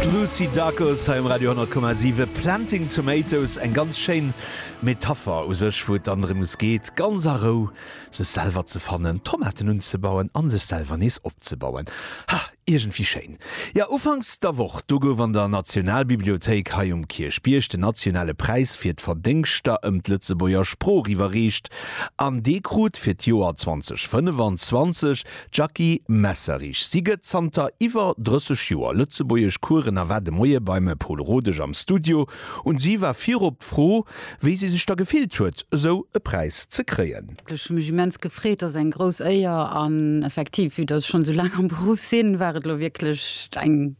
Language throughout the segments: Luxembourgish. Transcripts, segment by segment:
D'Lucy Dacus hei um Radio 10,7. Planting Tomatoes, eng ganz schéin Metapher u sech, wou et dann drëms geet, ganz a Rou sech selwer ze fannen, Tomaten unzebauen an sech selwer nees opzebauen. Ha, iergendwéi schéin. Jo, ufanks der Woch, do gouf an der Nationalbibliothéik hei um Kierchbierg den nationale Präis fir d'Verdéngschter ëm d'Lëtzebuerger Sprooch iwwerreecht an dee krut fir d'Joer 2025 D'Jackie Messerich, si gëtt zanter iwwer 30 Joer Lëtzebuergesch Coursen a war de Moie beim Pol Rodesch am Studio un si war virop d'Fro, wéi si sech da gefillt huet, esou e Präis ze kréien. Ech hu mech immens gefreet, ass eng grouss Éier an effektiv, vue datt ech schonn esou laang am Beruff sinn, war et elo wierklech eng.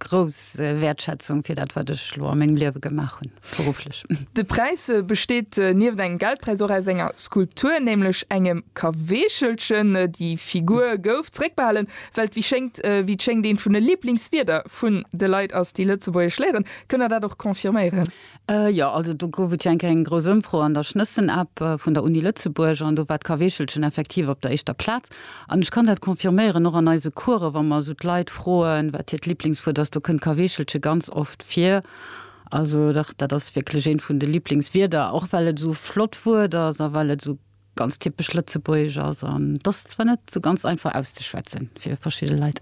Grouss Wäertschätzung fir dat, wat ech elo a mengem Liewe gemaach hunn, berufflech. De Präis besteet nieft engem Geldpräis och aus enger Skulptur, nämlech engem Kaweechelchen. Déi Figur gouf zeréckbehalen, well et, wéi schéngt, wéi et schéngt, eent vun de Liblingswierder vun de Leit ass, déi Lëtzebuergesch léieren. Kënnt Der dat och confirméieren? Jo, also do gouf et jo eng Kéier eng grouss Ëmfro an der Schnëssen-App vun der Uni Lëtzebuerg an do war d'Kaweechelchen effektiv op der éischter Plaz. An ech kann dat confirméieren, och an eise Coursen, wa mer esou d'Leit froen, wat hiert Liblingswuert ass, do kënnt Kaweechelche ganz oft vir. Also dach, dat ass wierklech eent vun de Liblingswierder, och well et esou flott Wuert ass a well et esou ganz typesch lëtzebuergesch ass an dass zwar net sou ganz einfach auszeschwätzen fir verschidde Leit.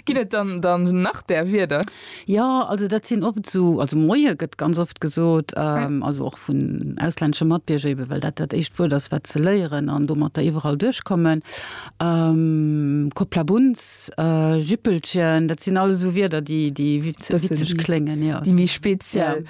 Ginn et dann dann nach där Wierder? Ja, also dat sinn oft sou, also Moie gëtt ganz oft gesot, ähm, also och vun auslännesche Matbierger ebe well dat dat éischt Wuert ass wat se léieren an domatter iwwerall duerchkommen. Ähm, Kopplabunz, äh, Jippelchen, dat sinn alles esou Wierder déi déi witzeg kléngen, jo. Déi méi speziell.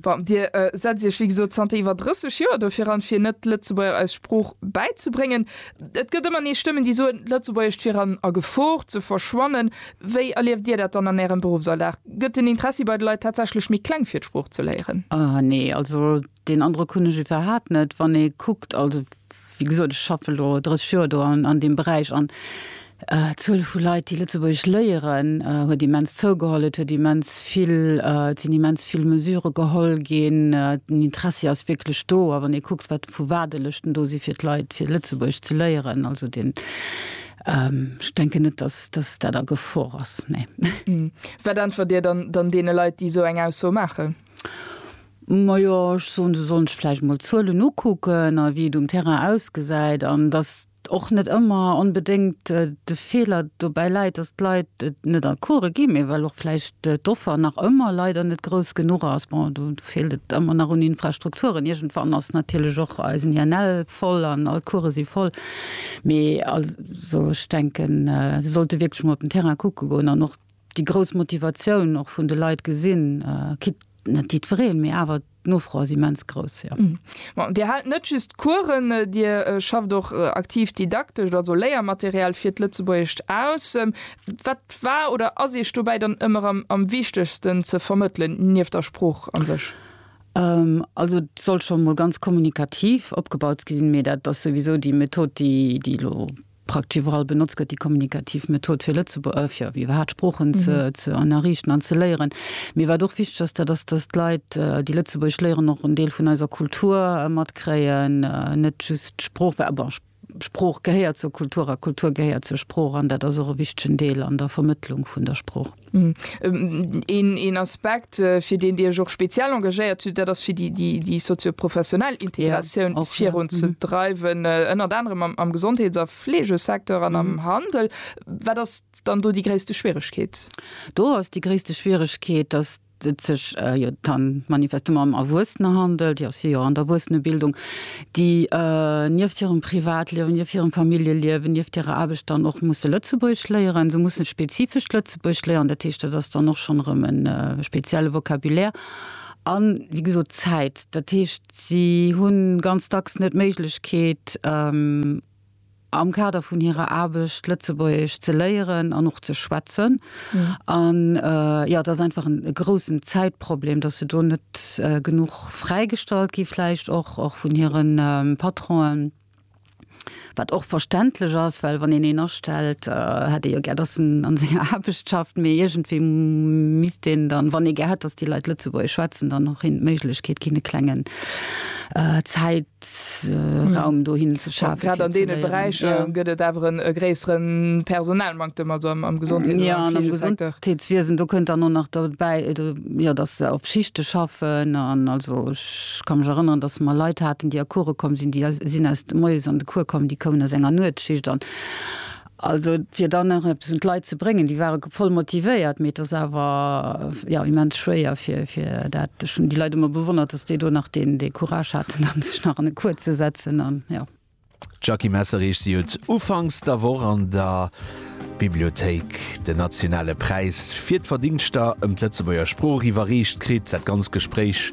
Bon, Dir äh, setzt Iech wéi gesot zanter iwwer 30 Joer dofir an, fir net Lëtzebuerger eis Sprooch bäizebréngen. Et gëtt ëmmer nees Stëmmen, déi soen, d'Lëtzebuergescht wier an a Gefor ze verschwannen. Wéi erlieft Dir dat dann an Ärem Beruffsalldag? Gëtt den Interessi bei de Leit tatsächlech méi kleng, fir d'Sprooch ze léieren? Ah nee, also deen Androck hunn ech iwwerhat net. Wann ee kuckt, also wéi gesot, ech schaffe lo 30 Joer do an, an deem Beräich an, D'Zuel vu Leit, déi Lëtzebuergesch léieren, huet immens zougeholl. Et huet immens vill, et sinn immens vill Mesure geholl ginn. Den Interessi ass wierklech do. A wann ee kuckt, wat vu Waardelëschten do si fir d'Leit, fir Lëtzebuergesch ze léieren, also den, ech denken net, dass, dass dat a Gefor ass, nee. Wat äntwert Dir dann deene Leit, déi esou eng Ausso maachen? Majo, ech soen, se sollen sech vläicht emol d'Zuelen ukucken a wéi et um Terrain ausgesäit an dass, och net ëmmer onbedéngt de Feeler dobäi läit, dass d'Leit et net an d'Course ginn, mee well och vläicht d'Offer nach ëmmer leider net grouss genuch ass. Bon, do feelt et ëmmer nach un Infrastrukturen. Iergendwann ass natierlech och eisen INL voll an all d'Course si voll. Mee also ech denken, se sollte wierklech emol op den Terrain kucke goen an och déi grouss Motivatioun och vun de Leit gesinn, quitte net jiddwereen, mee awer. D'Nofro ass immens grouss, jo. Bon, Dir haalt net just Coursen, Dir schafft och aktiv didaktescht, also Léiermaterial fir d'Lëtzebuergescht aus. Wat war oder ass Iech dobäi dann ëmmer am wichtegsten ze vermëttelen, nieft der Sprooch a sech? Also et soll scho mol ganz kommunikativ opgebaut sinn, mee dat ass souwisou déi Method, déi elo Praktesch iwwerall benotzt gëtt déi kommunikativ Method, fir Lëtzebuerg, fir wéi iwwerhaapt Sproochen ze ze ënnerriichten an ze léieren. Mir wat och wichteg ass, dat ass, dass d'Leit, déi Lëtzebuergesch léieren, och en Deel vun eiser Kultur matkréien, net just d'Sprooch, well, bon, Sprooch gehéiert zur Kultur a Kultur gehéiert zur Sprooch an dat ass och e wichtegen Deel an der Vermëttlung vun der Sprooch. Een Aspekt fir deen Dir Iech och speziell engagéiert hutt, dat ass fir déi sozio-professionell Integratioun och virun ze dreiwen, ënnert anerem am Gesondheets a Fleegesecteur an am Handel. Wat ass dann do déi gréisste Schwieregkeet? Do ass déi gréisste Schwieregkeet, datt et sech jo dann manifestement ëm Erwuessener handelt, jo si jo an der Erwuessenebildung, déi nieft hirem Privatliewen, nieft hirem Familljeliewen, nieft hirer Aarbecht dann och musse Lëtzebuergesch léieren. Se mussen spezifescht Lëtzebuergesch léieren, dat heescht, dat ass dann och schonn erëm e spezielle Vocabulaire an, wéi gesot, Zäit. Dat heescht, si hu ganz dacks net d'Méiglechkeet, am Kader vun hirer Aarbecht Lëtzebuergesch ze léieren an och ze schwätzen. An jo, et ass einfach e groussen Zäitproblem, dass se do net genuch fräigestallt gi vläicht och vun hire Patronen, wat och verständlech ass, well wann een een astellt, hätt ee jo gär, dass en a senger Aarbecht schafft. Mee iergendwéi misst een dann, wann ee gär hätt, dass déi Leit Lëtzebuergesch schwätzen, dann och hinnen d'Méiglechkeet ginn, e klengen Zäit, Raum dohin ze schafen. Grad an deene Beräicher gëtt et awer e gréissere Personalmanktem, also am Gesondheets an am Fleegesekteur. Jo, am Gesondheetswiesen, do kënnt dann och nach dobäi, jo, datt se op Schichte schaffen. An also ech ka mech erënneren, datt mer Leit haten, déi a Coure komm sinn, déi sinn aus moies an de Cours komm, déi koumen aus enger Nuetsschicht. An Also fir dann nach eppes un d'Leit ze bréngen, déi ware voll motivéiert, mee et ass awer, jo, immens schwéier fir dat. Ech hunn déi Leit ëmmer bewonnert, datt déi do nach deen dee Courage haten, dann sech nach an e Cours ze setzen an, jo. D'Jackie Messerich, si huet ufanks der Woch an der Bibliothéik den nationale Präis fir d'Verdingschter ëm d'Lëtzebuerger Sprooch iwwerreecht kritt. Dat ganz Gespréich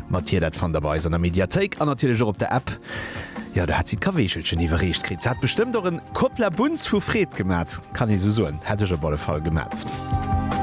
mat hir, dat fannt der bei eis an der Mediathéik an natierlech och op der App. Jo, do hat si d'Kaweechelchen iwwerreecht kritt. Se hat bestëmmt och en Kopplabunz vu Freed gemat, kann ee sou soen. Hätt ech op alle Fall gemat.